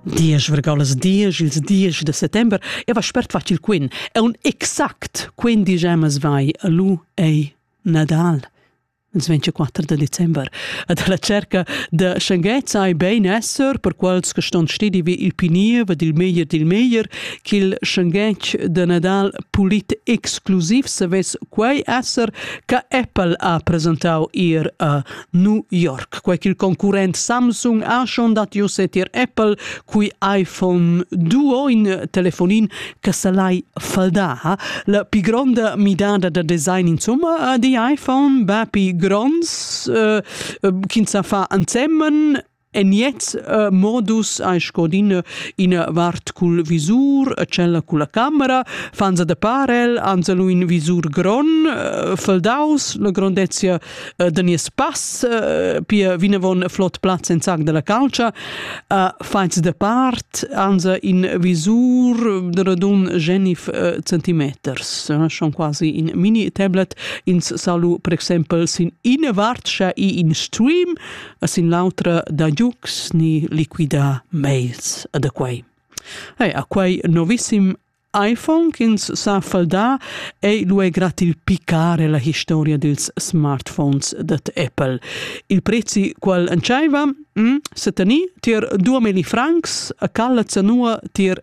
Diesch vergaulas diesch, ils diesch de settember, e va spert facil quin. E un exact quindi gemas vai, lu ei Nadal ils 24 de december. Ad la cerca de Schengez sai bein esser, per quels che ston stedi vi il pinier, ed il meglier dil meglier, ch'il Schengez de Nadal pulit exclusiv se ves quei esser che Apple ha presentau ir a New York, quei ch'il concurrent Samsung ha schon datius tier Apple, cui iPhone duo in telefonin che salai faldà. La pi gronda midada da design insomma di iPhone, ba pi gronds, uh, ch'ins sa fa ansemen E niets uh, modus hai scodin ina vart cul visur e tschella culla camera, fanza de parel, anzelu in visur gron, uh, feldaus, la grondezia uh, de nies pass, uh, pia vinavon flot plaz en sac della calcia, uh, fains de part, anza in visur de radun genif uh, centimeters, uh, schon quasi in mini tablet, ins salu per exempel sin ina vart, scha i in stream, e sin l'autra da giugs ni liquidar mails a da quei. Ei, a quei novissim iPhone ch'ins sa faldar ei lu è gratil picare la historia dils smartphones dat Apple. Il prezi qual entscheiva hm, se teni tier 2000 francs a calla zanua tier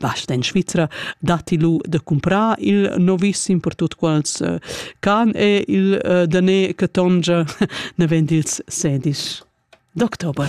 Basta in Svizra datti lu da cumprar il novissim per tut quels eh, can e il eh, daner che tongia naven dils sedis d'october.